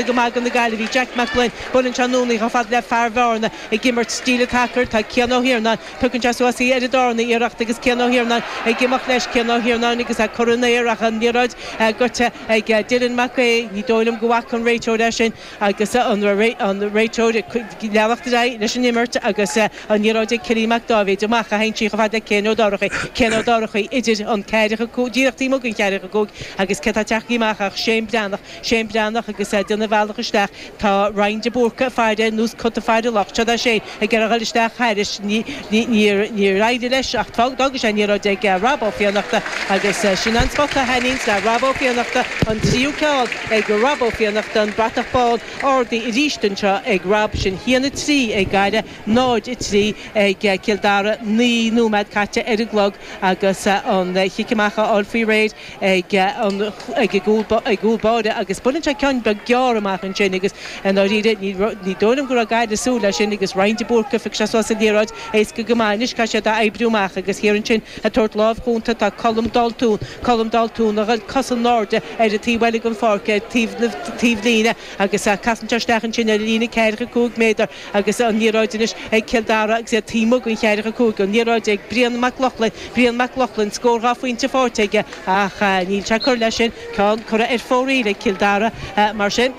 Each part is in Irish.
Go maith ag na Gaillimhigh, Jack Mac Gloinn, Buaileann sé anonn í chomh fada le fear Bheárna ag imirt sa líne tacaí, tá Cian Ó hIarnáin, Tugann sé suas í ar an darna iarracht agus Cian Ó hIarnáin ag imeacht leis, Cian Ó hIarnáin agus é curtha san aer ach an liathróid goidte ag Dylan Mac Aoidh, ní dóigh liom go bhfaca an réiteoir é sin agus an réiteoir ag leanacht ar aghaidh leis an imirt agus an liathróid ag Killian Mac Dáibhéid amach, a shíneann sé í chomh fada le Céin Ó Dorchaí, Céin Ó Dorchaí idir an ceathracha 5, díreach taobh amuigh den cheathracha 5 agus cé tá ag teacht amach ach Séan Breathnach. Séan Breathnach agus é ag déanamh a bhealach isteach tá Ryan de Búrca ag faire ar nós cat ag faire luch. Seo é Séan ag iarraidh a dhoil isteach thairis. Níor éirigh leis ach d'fhág sé an liathróid ag Rob Ó Fiannachta agus sin an smacht a thaitníonns le Rob Ó Fiannachta. An tríú ceann ag Rob Ó Fiannachta. An bratach bán ardaithe arís anseo ag Rob. Sin cheana 3 ag Gaillimh, 0, 3 ag Cill Dara. Naoi nóiméad caite ar an gclog agus an cic amach á fháil faoi réir. ag an ag cúl báire agus buaileann sé ceann beag gearr amach ansin agus i ndáiríre ní dóigh liom go raibh Gaillimh ag súil leis sin agus Ryan de Búrca, faigheann sé seilbh ar an liathróid, éasca go maith anois, caithfidh siad í a oibriú amach agus thiar ansin ag tabhairt lámh chúnta tá Colm Daltún, Colm Daltún a ghoil cos in airde ar an taobh eile den pháirc ar an taobhlíne agus casann sé isteach ansin ar an líne ceathracha cúig méadar agus an liathróid anois ag Cill Dara agus iad taobh amuigh den cheathracha cúig, an liathróid ag Brían Mac Lochlainn, Brían Mac Lochlainn, scór dhá phointe faighte aige ach níl sé ag cur leis sin, ceann curtha ar fóraoil ag Cill Dara mar sin.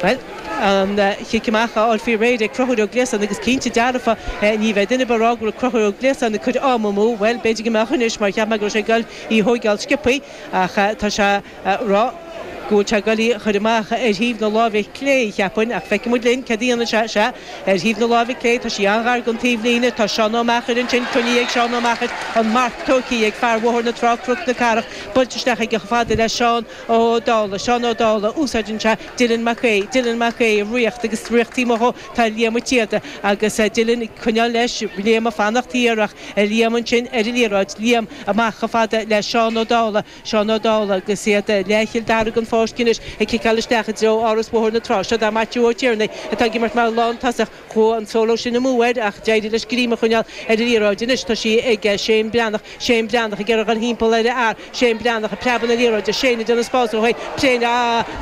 Bhuel, an cic amach á fháil faoi réir ag Cruthúir Ó Gliasáin agus cinnte dearfa ní bheidh duine ag rá go raibh Cruthúir Ó Gliasáin ag cur am amú, bhuel, b'fhéidir go mbeadh anois mar cheap mé go raibh sé ag dul í a thóigeáil sciobtha ach tá sé ag rá go bhfuil sé ag goil í a chur amach ar thaobh na láimhe clé, cheapfainn, ach feicfimid linn céard a dhéanfaidh sé. Sea, ar thaobh na láimhe clé, tá sí an-ghar don taobhlíne, tá Seán Ó Meachair ansin, coinnithe ag Seán Ó Meachair, an marc tógthaí ag fear Bhóthar na Trá, Cnoc na Cathrach, buailte isteach aige chomh fada le Seán Ó Dálaigh, Seán Ó Dálaigh, úsáideann sé Dylan Mac Aoidh, Dylan Mac Aoidh, ag rith agus ag rith taobh amuigh dhó, tá Liam ag tíocht agus Dylan ag coinneáil leis, Liam ag fanacht thiar ach Liam ansin ar an liathróid, Liam amach chomh fada le Seán Ó Dálaigh, Sean Ó Dála, Agus iad i leath Chill Dara den pháirc anois ag ciceáil isteach i dtreo Áras Bhóthar na Trá. Siod é Maitiú Ó Tiarnaigh atá ag imirt mar lán-tosach. Chuaigh an solo sin amú air ach d'éirigh leis greim a choinneáil ar an liathróid. Anois tá sí ag Shane Breathnach. Shane Breathnach ag iarraidh dhul thimpeall ar a fhear. Shane Breathnach ag preabadh na liathróide. Shane ag déanamh spás dó féin.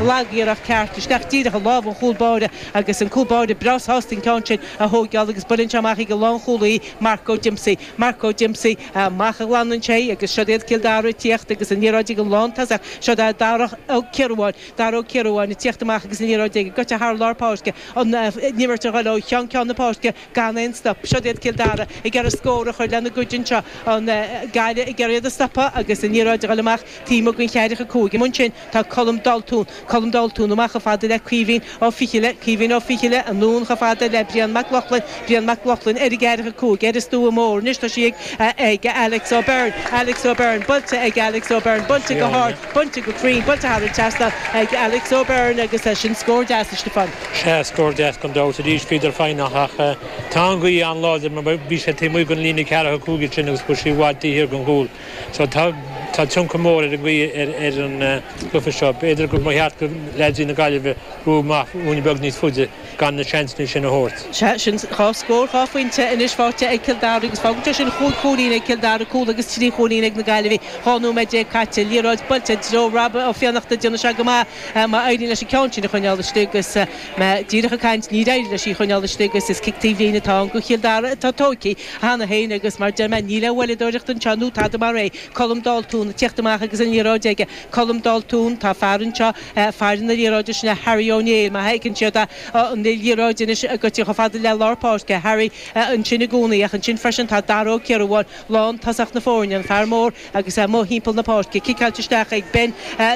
Lag iarracht ceart isteach díreach i lámh an chúl báire agus an cúl báire breá sásta an ceann sin a thóigeáil agus buaileann sé amach ag an lán-chúlaí Mark O Dempsey. Mark O Dempsey, Amach a ghlanann sé agus siod iad Cill Dara ag tíocht agus an liathróid ag an lántosach. Siod é Darach O Ciaruáin, Dara O Ciaruáin ag tíocht amach agus an liathróid aige. Goite thar lár páirce. An imirt a ghoil ó cheann ceann na páirce gan aon stop. Siod iad Cill Dara ag iarraidh scór a chur lena gcuid anseo. An Gaillimh ag iarraidh iad a stopadh agus an liathróid a ghoil amach taobh amuigh den cheathracha cúig. Amuigh ansin. Tá Colm Daltún, Colm Daltún, amach chomh fada le Caoimhín Ó Ficheallaigh, Caoimhín Ó Ficheallaigh, anonn chomh fada le Brian Mac Lochlainn, Brian Mac Lochlainn, ar an gceathracha cúig, ar an stua mór anois, tá sí ag, ag, Alex O'Beirne, Alex O'Beirne, buailte ag Alex O'Beirne, buailte go hard, buailte go cruinn, buailte thar an trasnán ag Alex O'Beirne agus sin scór deas, a Stiofáin. Sea, scór deas gan dabht, arís bhíodar foighneach ach tá an ghaoth an-láidir mar bhí sé taobh amuigh den líne ceathracha cúig ansin agus chuaigh sí i bhfad taobh thiar den chúl. So tá tá tionchar mór ag an ngaoth ar ar an gcluiche seo. B'fhéidir go mba cheart go leaids na Gaillimhe brú amach ruainne beag níos faide gan na seansanna sin a thabhairt. Sea, sin dhá scór, dhá phointe anois faighte ag Cill Dara agus fágann sé sin chúig chúilín ag Cill Dara, cúl agus trí chúilín ag na Gaillimhigh. Dhá nóiméad déag caite. Liathróid buailte i dtreo Rob Ó Fiannachta. Déanann sé go maith má éiríonn leis an ceann sin a choinneáil istigh agus mé díreach ag caint níor éirigh leis í choinneáil istigh agus is cic taobhlíne atá ann go Cill Dara atá tóigthe. Cheana féin, agus mar deir mé, níl aon mhoilleadóireacht anseo nó tada mar é. Colm Daltún, ag teacht amach agus an liathróid aige. Colm Daltún, Tá fear anseo, fear na liathróide, sin é Harry Ó Néill, má fheiceann siad an liathróid anois go dtí chomh fada le lár páirce, Harry ansin i gcónaí. Ach ansin freisin tá Dara Ó Ciarubháin, lántosach na foirne, an fear mór, agus é amuigh thimpeall na páirce. Ciceáilte isteach ag Ben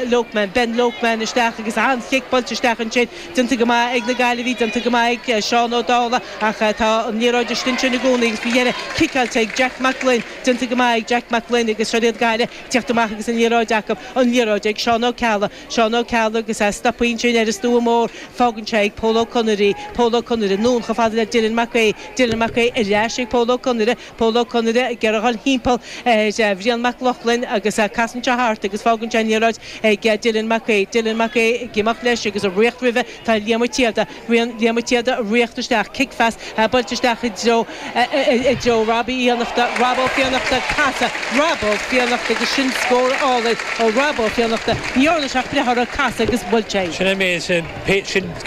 Loakman. Ben Loakman isteach agus an-chic buailte isteach ansin. Déanta go maith ag na Gaillimhigh. Déanta go maith ag Seán Ó Dálaigh ach tá an liathróid istigh ansin i gcónaí agus faoi dheireadh ciceáilte ag Jack Mac Gloinn. Déanta go maith ag Jack Mac Gloinn agus seo iad Gaillimh ag teacht amach agus an liathróid acu. An liathróid ag Seán Ó Ceallaigh. Seán Ó Ceallaigh agus é stoptha ansin ar an stua mór. Fágann sé ag Pól Ó Conaire í. Pól Ó Conaire anonn chomh fada le Dylan Mac Aoidh. Dylan Mac Aoidh ar ais ag Pól Ó Conaire. Pól Ó Conaire ag iarraidh a dhul thimpeall ar Bhrian Mac Lochlainn agus casann sé thart agus fágann sé an liathróid ag Dylan Mac Aoidh. Dylan Mac Aoidh ag imeacht leis agus ag ritheacht roimhe tá Liam Ó Síoda. Liam Ó Síoda ag ritheacht isteach, cic-phas, buailte isteach i dtreo, i dtreo Robbie Uí Fhiannachta. Rob Ó Fiannachta, casadh, Rob Ó Fiannachta agus sin scór álainn ó Rob Ó Fiannachta. Ní dhearna sé ach breith uirthi, casadh agus bhuail sé é. Sin é sin, sin.